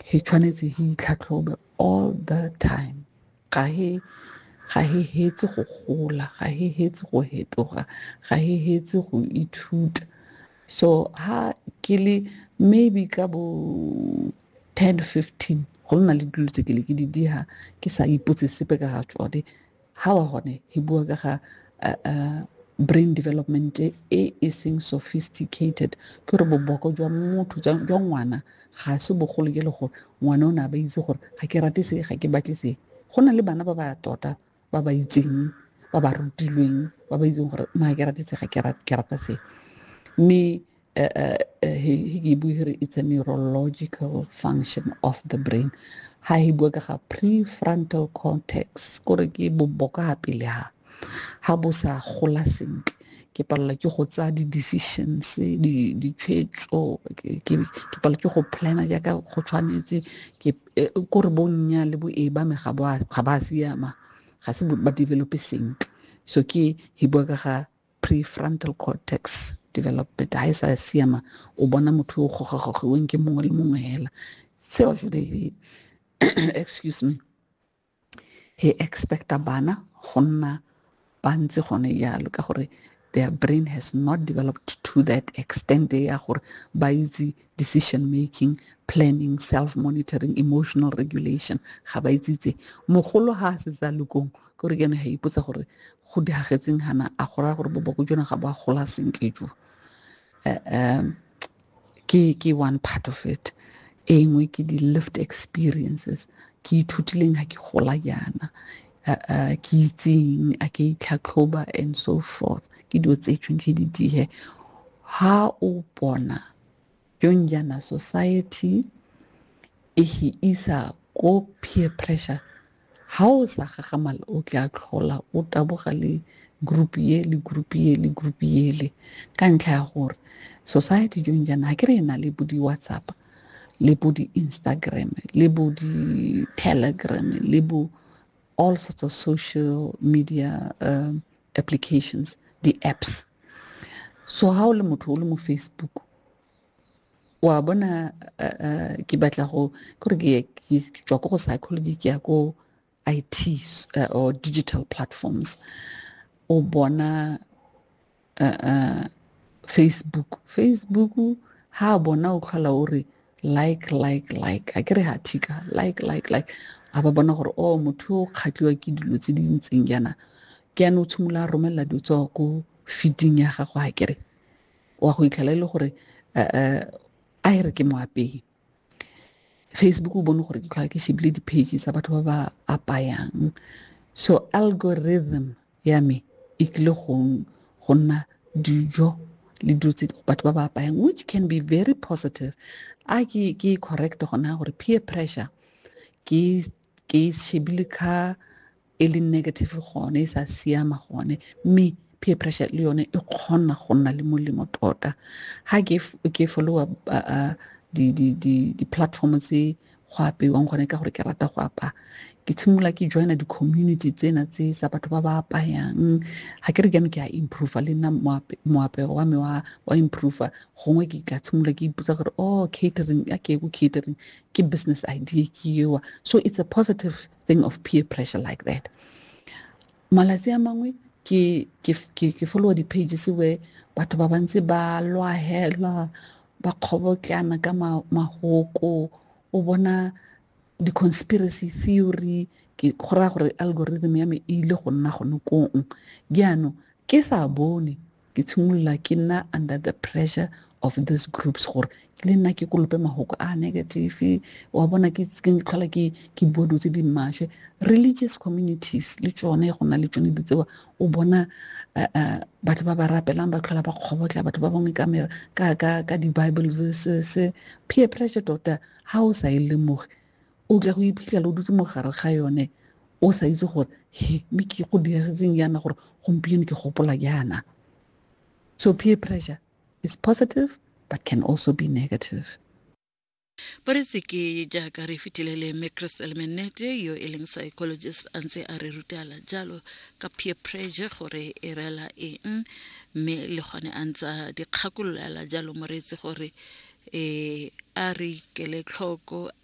He tshwanetse he itlhatlhobe all the time ga he ga he hetse go gola ga he hetse go hetoga ga he hetse go ithuta so ha ke le maybe ka bo ten fifteen go nna le dilo tse ke le ke di diha ke sa ipotse sepe ka ga tsone ha wa hone hi bua ka ga uh, uh, brain development e e seng sophisticated ke gore boboko jwa motho jwa ngwana ga se bogolo ke le gore ngwana o ne a ba itse gore ga ke rate se ga ke batle se go na le bana ba ba tota ba ba itseng ba ba rutilweng ba ba itseng gore na ke rate se ga ke rata se mme uh, uh, uh, he, he give here it's a neurological function of the brain ha he bua ka ga prefrontal cortex kore ke boboka ha pele ha ha bo sa gola sentle ke palelwa ke go tsaya di-decisions ditshwetso ke palelwa ke go plana jaaka go tshwanetse eh, kore bonnya le bo e ba me ga ba siama ga se ba develope sentle so ke he bua ka ga prefrontal cortex development ha e sa siama o bona motho o gogagogiweng ke mongwe le mongwe hela seo jode excuse me he expecta bana go nna ba ntse gone jalo ka gore their brain has not developed to that extent ya gore ba itse decision making planning self monitoring emotional regulation ga ba itse itse mogolo ga a setse a lekong ke gore ke ene ga ipotsa gore go diragetseng gana a go raya gore boboko jona ga bo a gola sentle jo um ke ke one part of it e nngwe ke di-lift experiences ke ithutileng ga ke gola jaana ke itseng a ke itlhatlhoba and so forth ke dilo tse tshwanetse di dihe ha o bona Young Yana Society e hi isa ko peer pressure ha o sa gagamala o tla tlhola o taboga le group ye le group ye le group yele ka ntlha ya gore society jong jaana ga ke re e na le bo di-whatsapp le bo di-instagram le bo di-telegram le bo all sorts of social media um, applications di-apps so ha o le motho o le mo facebook wa bona uh, uh, ke batla go kore ke tswa ko go psychology ke ya ko it uh, or digital platforms o bona uh, uh, facebook facebook ha bona o tlhola o re like like like a kere ga thika like like like a ba bona gore o oh, motho o kgatliwa ke dilo tse di ntseng jaana ke yana o tshimolola a romelela dilo tsa ko feeding ya gago a kere wa go itlhela e le gore eh, eh, a e re ke moapei facebook o bone gore ke tlhola ke shebile di-page tsa batho ba ba apayang so algorithm ya me e tlile go nna dijo le dilo tse batho ba ba apayang which can be very positive a ke ke correct gona gore peer pressure ke ke shebile ka e le negative gone e sa siama gone mme peer pressure le yone e kgona go nna le molemo tota ga ke followa di-platform tse go apeiwang gone ka gore ke rata go apaya ke tshimolola ke joina di-community tsena tse sa batho ba ba apayang ga ke re jaanong ke a improve le nna moapego wa me wa improve gongwe ke tla tshimolola ke ipotsa gore oh catering a ke ko catering ke business idea ke ewa so it's a positive thing of peer pressure like that malatsi a mangwe ke followa di-pages where batho ba bantsi ba lwahelwa ba kgobotlana ka mahoko o bona di-conspiracy theory ke go raya gore algorithm ya me e ile go nna gone kong jaanong ke sa bone ke tshimolola ke nna under the pressure of these groups gore ke le nna ke kolope mahoko a negative wa bona ke tlhola ke ke bua dilo tse di maswe religious communities le tsone go na le tsone di tsewa o bona eh, eh, batho ba ba rapelang ba tlhola ba kgobotla batho ba bangwe ka di-bible verses peer pressure tota ga o sa e lemoge o tla go iphitlhela o dutse mogare ga yone o sa itse gore he mme ke go diragetseng yana gore gompieno ke gopola yana so peer pressure is positive but can also be negative ba re seke jaaka re fetile le mme crystal menete yo e leng psychologist a ntse a re rutela jalo ka peer pressure gore e rela eng mme le gone a ntse a dikgakololela jalo moreetsi gore um a re ikele tlhoko